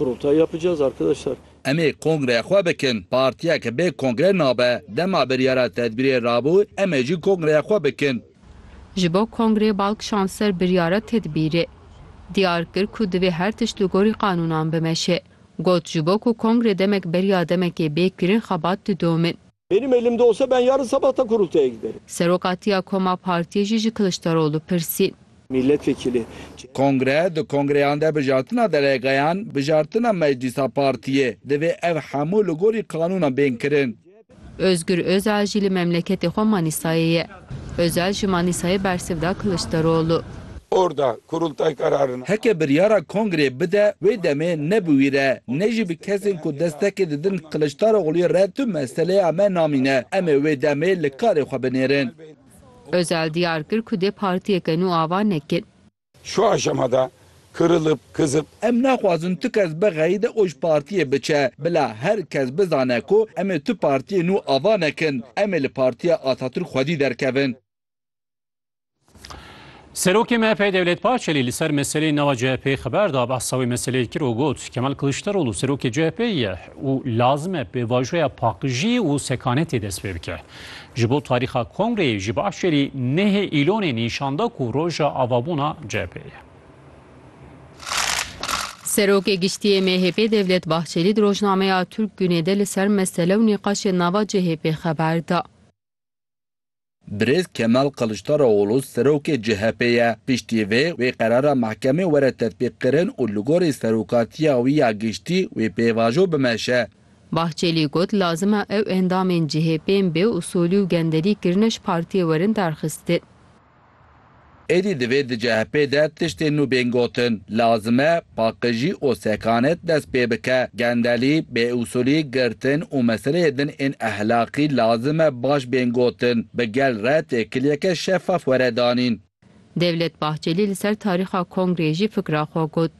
Rota yapacağız arkadaşlar. Em ê kongreya xwe bikin. Partiya ke bê kongre nabe. Dema biryara tedbîrê rabû em ê jî kongreya xwe bikin. Ji bo kongrê bal kişand ser biryara tedbîrê. Diyar kir ku divê her tişt li gorî qanûnan bimeşe. Got ji bo ku kongre demek beriya demekê bê kirin xebat didomîn. Benim elimde olsa ben yarın sabah da kurultaya giderim. Serokatiya koma partiyê jî ji Kiliçdaroglu pirsî. Milletvekili CHP. Kongre, Di kongreyan de bijartina delegeyan, bijartina meclîsa partiyê, divê ev hemû li gorî qanûnan bên kirin. Ozgur Ozal jî li memleketê xwe Manîsayê ye. Ocal ji Manîsayê bersiv da Kiliçdaroglu. Orda, Kurultay karar na. Heke biryara kongrê bide wê demê ne bi wî re ne jî bi kesên ku destekê didin Kiliçdarogluyê re tu meseleya me namîne. Em ê wê demê li karê xwe binêrin. Ocal diyar kir ku dê partiyeke nû ava nekin. Şu aşama de kırılıp, kızıp. Em naxwazin tu kes bi xeyî de oj partiyê biçe. Bila her kes bizane ku em ê tu partiyê nû ava nekin. Em ê li Partiya Atatürk xwedî derkevin. Serokê MHP'ê Devlet Bahçelî li ser meseleyên nava CHP'ê xeber da, behsa wê meseleyê kir û got, Kemal Kiliçdaroglu serokê CHP'ê ye û lazim e pêvajoya paqijî û sekanetê dest pê bike. Ji bo tarîxa kongreyê ji başêrî nêhê Îlonê nîşan da ku roja avabûna cepê ye. Serokê Giştî yê MHP'ê Devlet Bahçelî di rojnameya Turk Gunê de li ser mesele û nîqaşên nava CHP'ê xeber da. Birêz Kemal Kiliçdaroglû serokê CHP'ê ye. Piştî vê, wê qerara mehkemê were tetbîqkirin û li gorî serokatiya wî ya giştî wê pêvajo bimeşe. Bahçelî got, Lazim e ew endamên CHP'ên bê usolî û genderî kirine ji partiyê werin derxistin. Êdî divê di CHP'ê de tiştên nû bên gotin. Lazim e paqijî û sekanet dest pê bike. Gendelî, bêusolî, girtin û meseleyê din ên ehlaqî lazim e baş bên gotin. Bi gel re têkiliyeke şefaf were danîn. Devlet Bahçelî li ser tarîxa kongreyê jî fikra xwe got.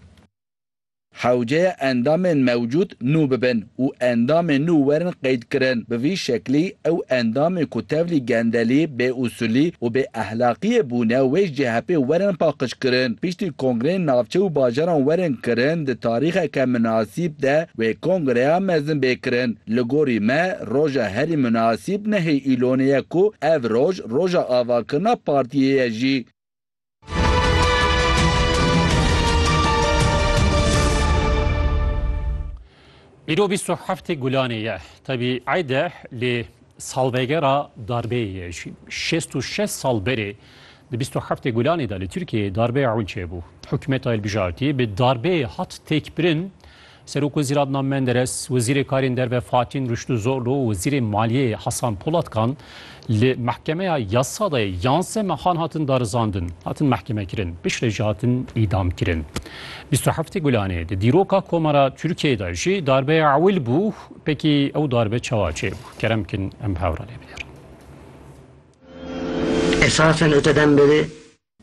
Hewceye endamên mewcûd nû bibin û endamên nû werin qeydkirin. Bi vî şeklî ew endamên ku tevlî gendelî, bêusûlî û bêehlaqiyê bûne wê ji CHP'ê werin paqijkirin. Piştî kongreyên navçe û bajaran werin kirin di tarîxeke minasîb de wê kongreya mezin bê kirin. Li gorî me roja herî minasîb nehê Îlonê ye ku ev roj roja avakirina partiyê ye jî. Îro bîst û heftê Gulanê ye. Tevî eyde lê salvegera darbeyê ye jî. Şêst û şeş sal berê di bîst û heftê Gulanê de li Tirkiyeyê darbeya ewil çêbû. Hikûmeta Hilbijartî bi darbeyê hat têkbirin Serokwezîran Nam Menderes, Wezîrê Karên Derve Fatîn Rûştûzoglû û Wezîrê Maliyê Hasan Polat kan li Mehkemeya Yasa de yan se mehan hatin darizandin, hatin mehkemekirin, piştre jî hatin îdamkirin. Bîst û heftê Gulanê, di dîroka Komara Tirkiyeyê de jî darbeya ewil bû, pekî ew darbe çawa çêbû? Kerem bikin em bi hev re lê bigêrin. Esasen öte dem beri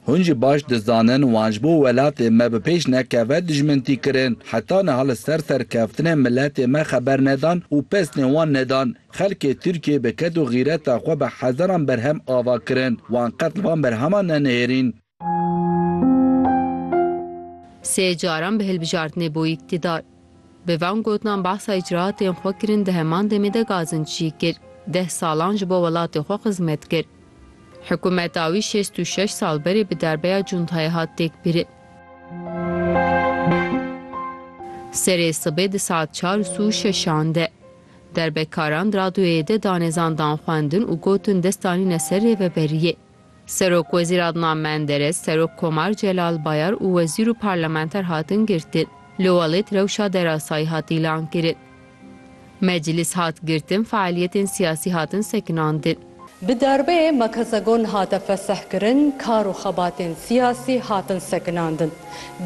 Hûn jî baş dizanin wan ji bo welatê me bi pêş nekeve dijmintî kirin. Heta niha li ser serkeftinên miletê me xeber nedan û pesnê wan nedan. Xelkê Tirkiyê bi ked û xîreta xwe bi hezaran berhem ava kirin. Wan qet li van berheman nenihêrîn. Sê caran bi hilbijartinê bû îktîdar. Bi van gotinan behsa îcraatên xwe kirin di heman demê de Gazin çî kir. Deh salan ji bo welatê xwe xizmet kir. Hikûmeta wî şêst û şeş sal berê bi darbeya cuntayê hat têkbirin. Serê sibê di saet çar û sû şeşan de derbekaran di radyoyê de danêzan dan xwendin û gotin dest danîne ser rêveberiyê. Serokwezîr Adnan Menderes, Serok Komar Celal Bayar û wezîr û parlamenter hatin girtin. Li welêt rewşa derasayî hat îlankirin. Meclîs hat girtin, fealiyetên siyasî hatin sekinandin. Bi darbeyê Makazagon hate fesehkirin, kar û xebatên siyasî hatin sekinandin.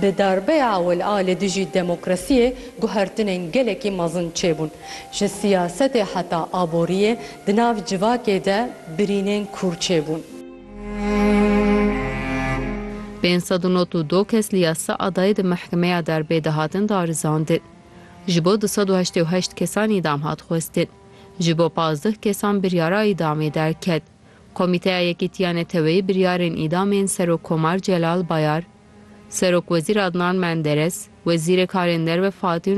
Bi darbeya ewil a li dijî demokrasiyê guhertinên gelekî mezin çêbûn. Ji siyasetê heta aboriyê Di nav civakê de birînên kûr çêbûn. Pênc sed û nod û du kes li ya Seadayê di mehkemeya derbê de hatin darizandin. Ji bo du sed û heştê û heşt kesan îdam hat xwestin. Ji bo pazdeh kesan biryara îdamê derket. Komîteya Yekîtiya Neteweyî biryarên îdamên Serokkomar Celal Bayar, Serokwezîr Adnan Menderes, Wezîrê Karên Derve Fatîn